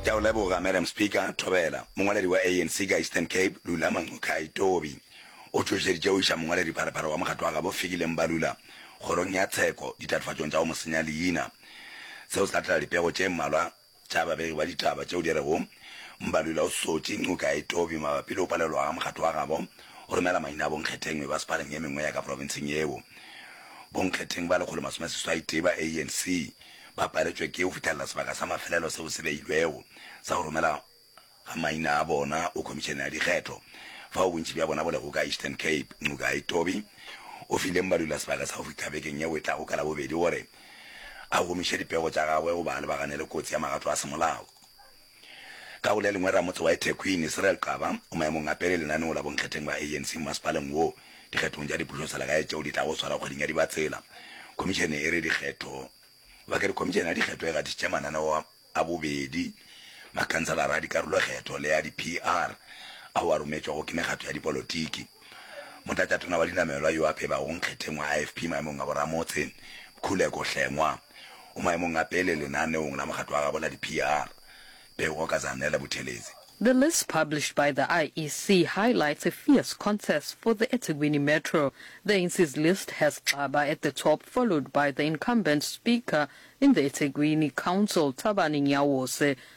Ke a o leboga, Madam Speaker. Thobela, mongwaledi wa ANC ka Eastern Cape, Lula Manqokhai Tobi, o tšhošeditše go iša mongwaledi pharephare wa mokgatlo wa gabo Fikile Mbalula kgorong ya tsheko ditatofatšong tša go mo senya leina. Seo se latela dipego tše mmalwa tša babegi ba ditaba tšeo di rego Mbalula o sotše Nqokhai Tobi mabapi le go palelwa ga mokgatlo wa gabo go romela maina a bonkgetheng mebasepaleng ye mengwe ya ka profenseng yeo. Bonkgetheng ba lekgolo masome seswai tee ba ANC ba paletšwe ke go fitlhelela sebaka sa mafelelo seo se beilwego sa go romela ga maina a bona go Khomišene ya Dikgetho, fao bontši bja bona bo lego ka Eastern Cape. Nqogai Tobi o fileng badula sebaka sa go fihla bekeng yeo e tlago ka Labobedi gore a gomiše dipego tša gagwe goba a lebagane le kotsi ya magato a semolao. Ka go le lengwe, ramotse wa eThekwini, Cyril Xaba, o maemong a pele lenaneo la bonkgetheng ba ANC mmasepaleng wo dikgethong tša dipušoselegae tšeo di tlago swara kgweding ya Dibatsela. Khomišene e re dikgetho ba ke re Khomišene ya dikgetho e gatišitše mananeo a bobedi makhanselara a dikarolokgetho le a di-PR ao a rometšwego ke mekgatho ya dipolotiki. Motlatšatona wa dinamelwa yo a febago nkgetheng wa IFP maemong a boramotse, Khuleko Hlengwa, o maemong a pele lenaneong la mokgatlo wa gabo la di-PR, Pego ka Zanele Buthelezi. The list published by the IEC highlights a fierce contest for the eThekwini Metro. The ANC's list has Xaba at the top followed by the incumbent Speaker in the eThekwini Council, Thabani Nyawose,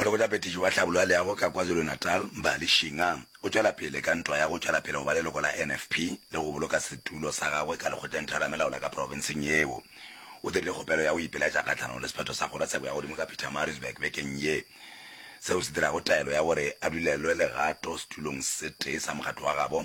Molekgotla-peteši wa Tlhabolo ya Leago ka KwaZulu-Natal, Mbali Shinga, o tšwela pele ka ntwa ya go tšwela pele go ba leloko la NFP le go boloka setulo sa gagwe ka Lekgotleng Theramelao la ka profenseng yeo. O dirile kgopelo ya go ipelaetša kgahlanong le sephetho sa Kgorotsheko ya Godimo ka Pietermaritzburg bekeng ye, seo se dirago taelo ya gore a dulelwe legato setulong se tee sa mokgatlo wa gabo.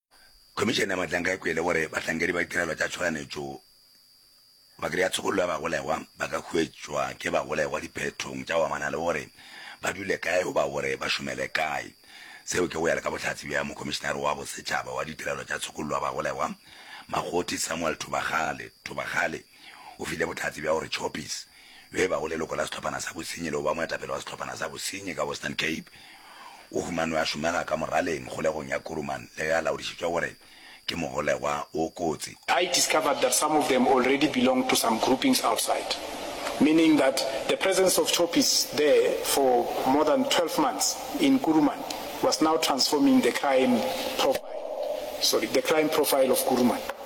Khomišene ya Matlanka e kwele gore bahlankedi ba ditirelo tša tšhoganetšo ba kry-a tshokollo ya bagolegwa ba ka hwetšwa ke bagolegwa diphethong tša go amana le gore ba dule kae goba gore ba šomele kae. Seo ke go ya le ka bohlatse bja Mokhomišenare wa Bosetšhaba wa Ditirelo tša Tshokollo ya Bagolegwa, Makgothi Samuel Thobagale, Thobagale. O file bohlatse bja gore Choppies, yo e bago leloko la sehlophana sa bosenyi le go ba moetapele wa sehlophana sa bosenyi ka Western Cape, o humanwe a šomega ka moraleng kgolegong ya Kuruman le ge a laodišitšwe gore ke mogolegwa o kotsi. I discovered that some of them already belonged to some groupings outside, meaning that the presence of Choppies there for more than twelve months in Kuruman was now transforming the crime profile, sorry, the crime profile of Kuruman.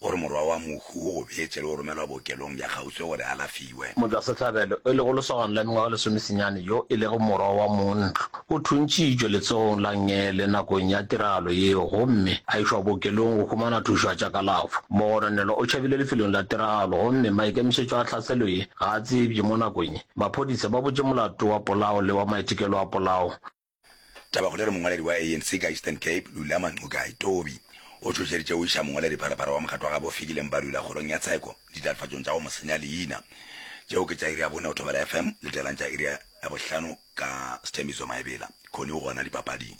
gore morwa wa mohu o gobetše le go romelwa bookelong bja kgauswi gore a alafiwe. Motšwasehlabelo, e lego lesogana la mengwaga e lesomesenyane yo e lego morwa wa montlo, o thuntšitšwe letsogong la Ngele nakong ya tiragalo yeo gomme a išwa bookelong go humana thušo ya tša kalafo. Mogononelwa o tšhabile lefelong la tiragalo gomme maikemišetšo a tlhaselo ye ga a tsebje mo nakong ye. Maphodisa ba butše molato wa polao le wa maitekelo a polao. Tabakgolo e re mongwaledi wa ANC ka Eastern Cape, Lulama Ncukai Tobi, o tšhošeditše go iša mongwaladipharapara wa mokgatlo wa gabo Fikileng Balula kgorong ya tsheko ditatofatšong tša go mo senya leina. Tšeo ke tša iri ya bone go Thobela FM, letelang tša iri ya bohlano ka Sthembiso Maebela. Connie o gona dipapading.